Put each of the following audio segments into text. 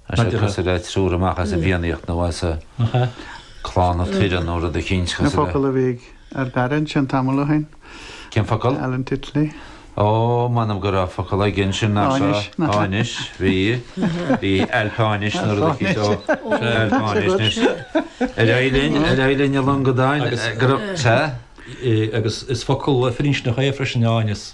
Tá sé cosúil le triúr amach as an bhFiannaíocht nó as Clanna Tuireann nó rud eicínt cosúil. Na focail a bhí ar Barry ansin tamall ó shin. Cén focal? Alan Titley. Ó, m'anam go raibh focal aige ansin nach raibh? Áinis. Áinis, bhí. Bhí Ailf Áinis nó rud eicínt. Ailf Áinis. Ó, sea, Ailf Áinis anois. Ar aghaidh linn, ar aghaidh linn a longadáin. Sea? Agus is focal firinscneach é freisin, áineas.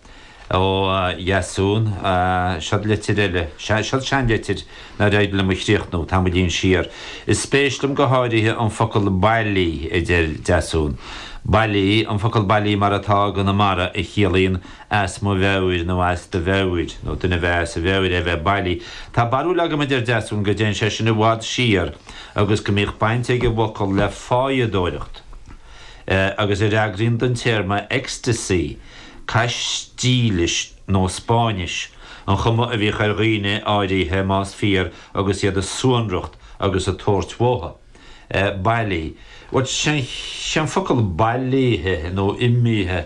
Ó Dheasún, seod litir eile. Sea, seod seanlitir nár éirigh liom a chríochnú, tamaillín siar. Is spéis liom go háirithe an focal 'bailí', a deir Deasún. Bailí, an focal 'bailí' mar atá i gConamara, a chiallaíonn 'as mo mheabhair' nó 'as do mheabhair', nó duine a bheith as a mheabhair é a bheith bailí. Tá barúil agam, a deir Deasún, go dtéann sé sin i bhfad siar agus go mbíodh baint ag an bhfocal le fáidheadóireacht. agus a fhreagraíonn don téarma 'ecstasy', Caistílis nó Spáinnis, an chuma a bhíodh ar dhaoine áirithe, más fíor, agus iad a suanracht agus ag tabhairt uathu. bailí, but sé an focal bailithe nó imithe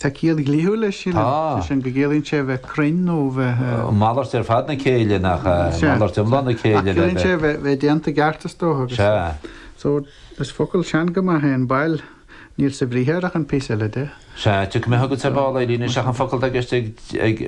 Tá ciall dhlíthiúil leis sin, sé sin go gciallaíonn sé bheith cruinn nó bheith. malairt ar fad na céille nach ea? Malairt iomlán na céille. Ach ciallaíonn sé bheith déanta i gceart is dócha agus. Sea. So, is focal sean go maith é an bail, níl sa bhriathar ach an píosa eile de. Sea, tiocfaidh mé chugat ar ball, a Éilín, is ea an focal atá i gceist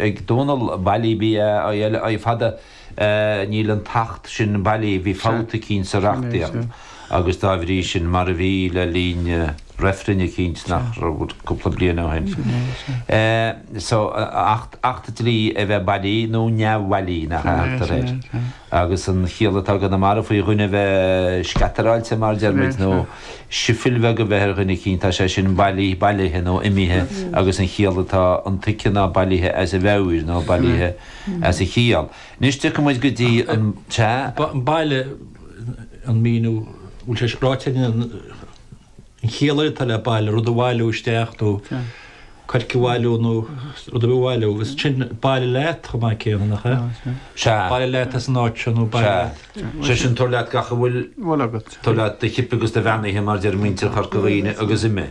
ag Dónall, bailí, B-a-i-l-i, fada. Níl an tAcht sin bailí, bhí fabht eicínt sa reachtaíocht agus dá bhrí sin, mar a bhí le linn reifrinn eicínt nach raibh cúpla bliain ó shin. So, Acht Dlí a bheith bailí nó neamhbhailí, nach ea a thugtar air. Agus an chiall atá i gConamara faoi dhuine a bheith scatteráilte mar a deir muid nó sifil bheag a bheith ar dhuine eicínt, tá sé sin bailí, bailithe nó imithe agus an chiall atá intuigthe ná bailithe as a mheabhair nó bailithe as a chiall. Anois tiocfaidh muid go dtí an, sea, bailigh, an míniú bhfuil sé ráite ag an an chiall atá le bailigh, rud a bhailiú isteach nó coirce a bhailiú nó rud a bhailiú agus sin bailigh leat chomh maith céanna nach ea? Sea. Bailigh leat as an áit seo nó bailigh leat. Sé sin tabhair leat gach a bhfuil agat. Tabhair leat do chip agus do mheanaithe mar deir muintir Chorca Dhuibhne agus imigh.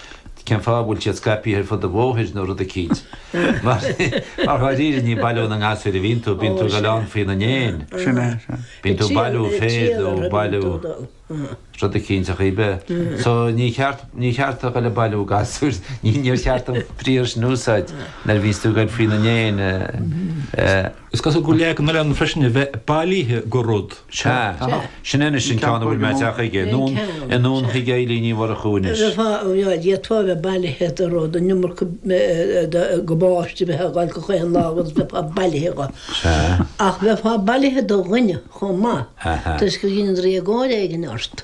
Cén fáth a bhfuil siad scaipthe ar fud an bhóthair nó rud eicínt? Mar dháiríre ní ag bailiú na ngasúr a bhíonn tú, bíonn tú ag goil ann faoina ndéin. Sin é, sin. Bíonn tú ag bailiú féir nó ag bailiú rud eicínt ach ní be. So níor cheart, níor cheart a dhul ag bailiú gasúir, níor cheart an briathar sin a úsáid nuair a bhíonns tú ag goil faoina ndéin. Is cosúil go bhfuil leagan ann freisin a bheith bailithe de rud. Sea. Sin anois an ceann a bhfuil mé ag teacht chuige. I nDún Chaoin ag Eibhlín Ní Mhurchú anois. Bheadh díot atá a bheith bailithe do rud, an iomarca gabáiste a bheith á fháil gach aon lá agus bheifeá bailithe go. Sea. Ach bheifeá bailithe do dhuine chomh maith toisc gur dhein draíodóir éigin ort.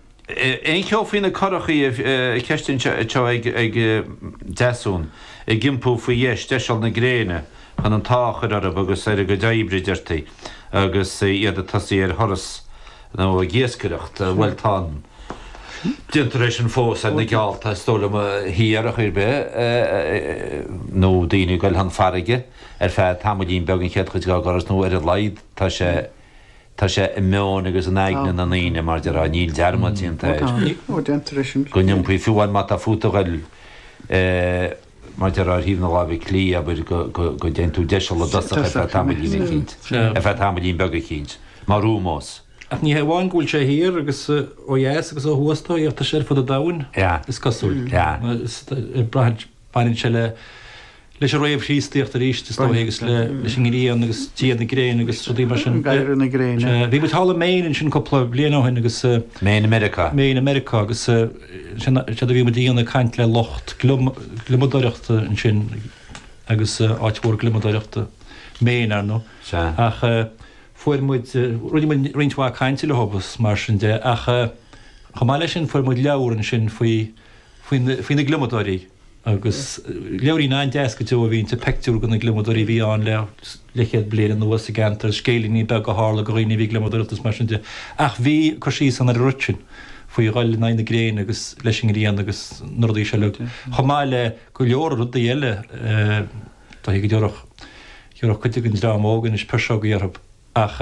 Aon cheo faoi na curachaí na ceisteanna seo ag Deasún, ag iompú faoi dheis deiseal na gréine chun an t-ádh a chuir orthu agus ar a gcuid oibre deirtí agus iad ag tosaí ar thuras nó ag iascaireacht, bhuel tá déantar é sin fós ar na geallta is dóigh liom thiar ar chaoi ar bith nó daoine ag goil chun farraige ar feadh tamaillín beag an chéad chuid dá dturas nó ar a laghad tá sé Tá sé i meon agus in aigne na ndaoine, mar déarfá, níl dearmad déanta air. Go n-iompaí fiú amháin má tá fút a ghoil, mar déarfá, ar thaobh na láimhe clí, abair, go dtéann tú deiseal i dtosach ar feadh tamaillín eicínt, ar feadh tamaillín beag eicínt, mar úmós. Ach ní hé amháin go bhfuil sé thiar agus ó dheas agus ó thuas, tá sé ar fud an domhain, is cosúil. Ag brath ar. Baineann sé le, leis an réamh-Chríostaíocht arís is dóigh agus le, leis an ngrian agus dia na gréine agus rudaí mar sin. Dia na gréine. Sea. Bhí muid thall i Maine ansin cúpla bliain ó shin agus. Maine i Meiriceá. Maine i Meiriceá agus sin, séard a bhí muid a dhéanamh ag caint le lucht gliomadóireachta ansin agus áit mhór gliomadóireachta Maine ar ndóigh. Sea. Ach fuair muid, rinne muid roinnt mhaith cainte leo agus mar sin de ach chomh maith leis sin fuair muid leabhar ansin faoi, faoi na gliomadóirí agus leabhairín an-deas go deo a bhí inti, peictiúr de na gliomadóirí a bhí ann le leithchéad bliain anuas sa gceantar, scéilíní beaga a tharla do dhaoine a bhí ag gliomadóireacht is mar sin de. Ach bhí cur síos ann ar an rud sin, faoi dhul in aghaidh na gréine agus leis an ngrian agus na rudaí seo uilig, chomh maith le go leor rudaí eile. Tá a fhios agam go dtabharfadh cuid den dream óg anois 'pisreogaí' orthu ach.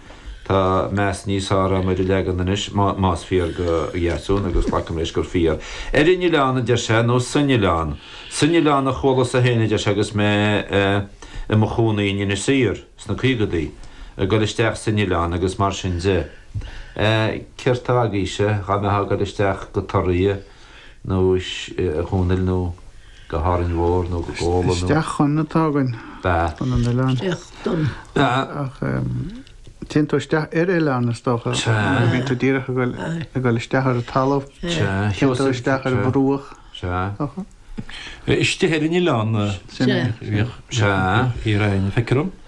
Tá meas níos fearr agam ar an leagan anois, más fíor do Dheasún, agus glacaim leis gur fíor. Ar an oileán, a deir sé, nó san oileán? San oileán a chualas-sa féin, a deir sé, agus mé i mo chónaí in Inis Oírr sna caogadaí. Ag dul isteach san oileán agus mar sin de. Céard tá agaibhse, dhá mbeifeá ag dul isteach go Toraigh? nó is a Dhónaill nó go hÁrainn Mhór nó go Gabhla nó. Isteach chun atá againn Ba. chun an oileáin. Feictear dom. Ba. Ach téann tú isteach ar oileán is dócha. Sea. Mar bíonn tú díreach ag dul Aye. ag dul isteach ar an talamh. Sea. Téann tú Sheosaimh. isteach ar Sea. bhruach. Sea. Dócha. Istigh ar an oileán. Sin é. Bhíodh. Sea. Bhíodh hí ar aon feictear dom.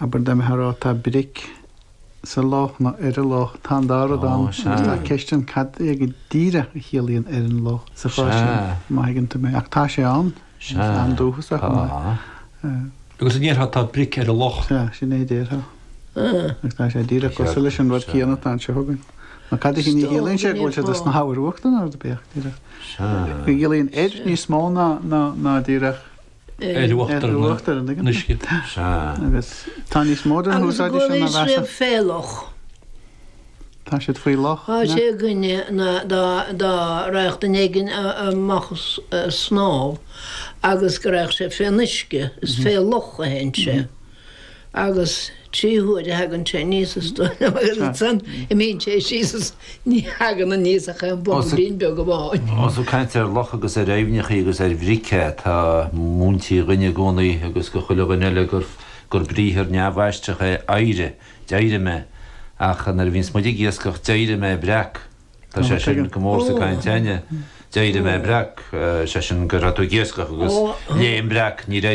abair dá mbeitheá ag rá tá bric sa loch nó ar an loch tá an dá rud ann agus tá ceist ann cad é go díreach a chiallaíonn ar an loch sa chás sin má thuigeann tú mé ach tá sé ann is an-dúchasach chomh maith. Agus an ndéarfá tá bric ar an loch? Sea, sin é a déarfá. Agus tá sé díreach cosúil leis an rud céanna atá anseo againn. Nó cad é sin a chiallaíonn sé go bhfuil sé ag snámh ar uachtar nó ar do bheadh díreach. Go gciallaíonn ar níos mó ná díreach. ar uachtar an uisce. Sea, agus tá níos mó den úsáid sin ann measaim. Agus go bhfuil siad fé loch. Tá siad faoi loch. Tá sé againne dá raghadh duine éigin amach ag snámh agus go raghadh sé fén uisce. Is fé loch a théann sé. Agus trí huaire a thagann sé aníos is dóigh liom agus ansan imíonn sé síos is ní thagann aníos ach aon bhobailín beag amháin. Ós ag caint ar loch agus ar aibhneachaí agus ar bhric atá múintí dhúinne i gcónaí agus do chuile dhuine eile gur briathar neamhaistreach é éirigh, d'éirigh mé, ach nuair a bhíonns muid ag iascach d'éirigh mé breac, tá sé sin go mór sa gcaint againn, d'éirigh mé breac, sé sin go raibh tú ag iascach agus léim breac, níor éirigh.